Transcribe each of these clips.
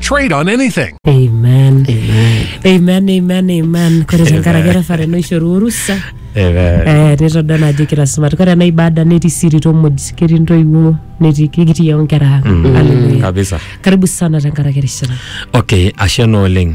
Trade on anything. Amen. Amen, amen, amen. Kore tenkaraki erefare naishoru orusa Amen. eh, nitodol ajo kira sumat. Kore ena ibada netii siri tomuj, ketii ntoiwuo, netii kikitii yao nkera ang. Hallelujah. Kabisa. Karibu sana tenkaraki erishata. Okay, ashe naa oleng.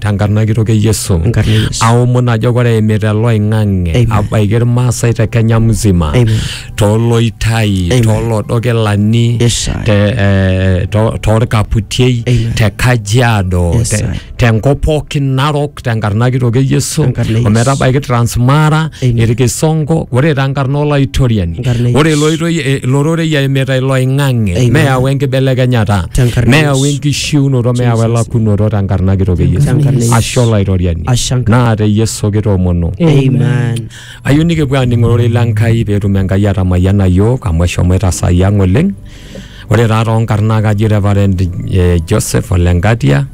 tenkarna kitok e Yesu. Enkarna e Yesu. Aomon ajo kore eimita oloing'ang'e Amen. abaiki irmaasai te Kenya mzima Amen. tooloitai Amen. toolodokilani Yes, sir. te, eh, to- toorkaputiei Amen. te Kajiado Yes, te- sir. tenkop pookin narok tenkarna kitok e Yesu Tenkarna e Yesu. ometabaiki Transmara Amen. irkisongo ore tenkarna olaitoriani Enkarna e ore Yesu. iloitoi- eh, ilororei eimita iloing'ang'e Amen. meyau enkibelekenyata Tenkarna e meyau Yesu. enkishu chiunoto meewa elakunoto tenkarna kitok e Yesu. Tenkarna Yesu. Ashe Olaitoriani. Ashe Enkai. Naa te Yesu kitoomono. Amen. Ayieu nikipuo aaning ororei le Nkai pee etum Enkai atamayiana iyiook amu eshomoita saai ang oleng. Ore taa toonkarn naa kaji Reverend eh, Joseph Ole Ngatia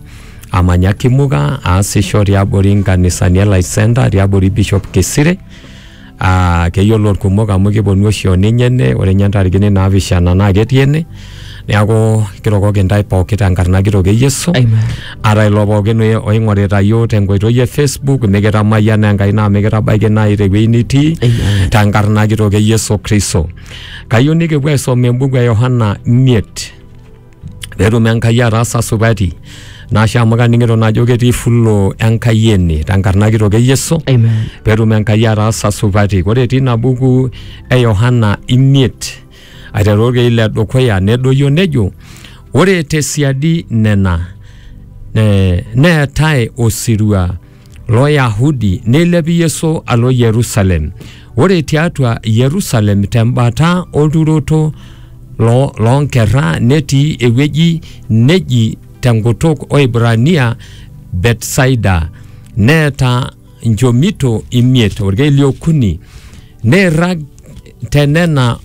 amanya Kimuka aasisho tiabori nkanisani e Life Center tiabori Bishop Kisire aa keyiolo irkumok amu kiponu oshi oninye ene ore ninye ntarikini naapishana naa ketii ene neeku kiroroki intae pooki tenkarna kitok e Yesu Amen. ata ilo pookin oye- oing'orita yiok tenkoitoi e Facebook mikitamayiana Enkai naa mikitabaiki naaji tewueji nitii Amen. tenkarna kitok e Yesu Kristo kayieu nikipuo aisoma embuku e Yohana miet petum Enkai ataasa supati nashe amu kaning'ito najo ketii fulo Enkai ene tenkarna kitok e Yesu Amen. petum Enkai ataasa supati ore etii ina buku e Yohana imiet aiteru orkei le dukuya nedoyio nejo ore tesiadi nena ne- neetae osirua Loyahudi neilep Yesu alo Yerusalem. Ore tiatua Yerusalem tembata olturoto lo- loonkerra netii ewueji neji tenkutuk Oibrania Betsaida. Neeta nchomito imiet olkeek liokuni. Neirrag tenena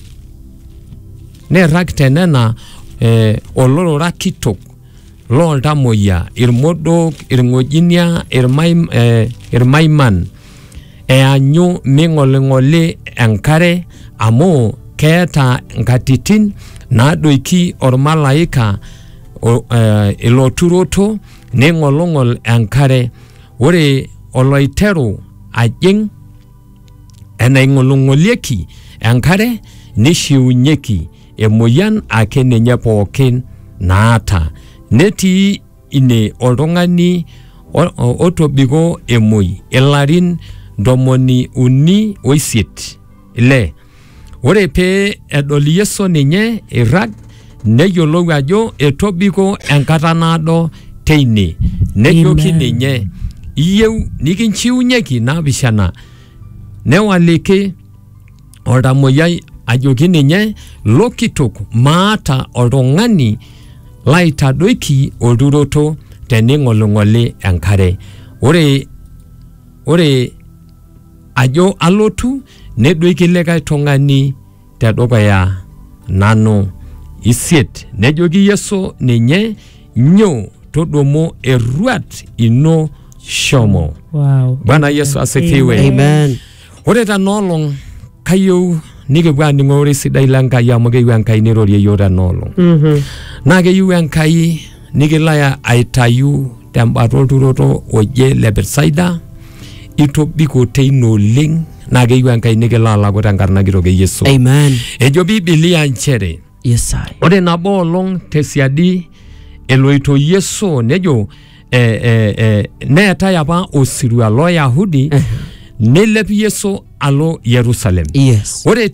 neirrag tenena eh, olorora kitok loo ltamoyia, ilmodook, ilng'ojinia, ilmaim, eh, ilmaiman eanyu ming'oling'oli enkare amu keeta nkatitin naadoiki olmalaika o- eh, ilo turoto neing'oling'ol enkare ore oloiteru ajing' enaing'oling'olieki enkare neishiunyeki Emoyian ake ninye pookin naata. Netii ine oltung'ani otobiko emoi ilarin ntomoni uni oisiet ile. Ore pee edol Yesu ninye eirrag neyiolou ajo etobiko enkata naado teine. Nejoki ninye, iyieu nikinchiunyeki naapishana? Newaliki oltamoyiai ajoki ninye lo kitok maata oltung'ani laitadoiki olturoto tening'oling'oli enkare ore ore ajo alotu nedoiki likae tung'ani tedukuya nanu isiet nejoki yesu ninye nyoo todumu erruat ino shomo Wow. bwana yesu asifiwe Amen. Ore tena olong kayieu nikipuo aaning'o ore sidai le Nkai amu keyieu Enkai neirorie iyiook tena olong. Naa keyieu Enkai nikilo ai- aitayu tembata olturoto oje le Betsaida itobiko teine oleng naa keyieu Enkai nikilo alaku tenkarna kitok e Yesu. Amen. Ejo Biblia nchere Yesaya. Ore nabo olong tesiadi eloito Yesu nejo eh, eh, eh, neetae apa osirua loo Yahudi neilep Yesu alo Yerusalem. Yes. Ore ti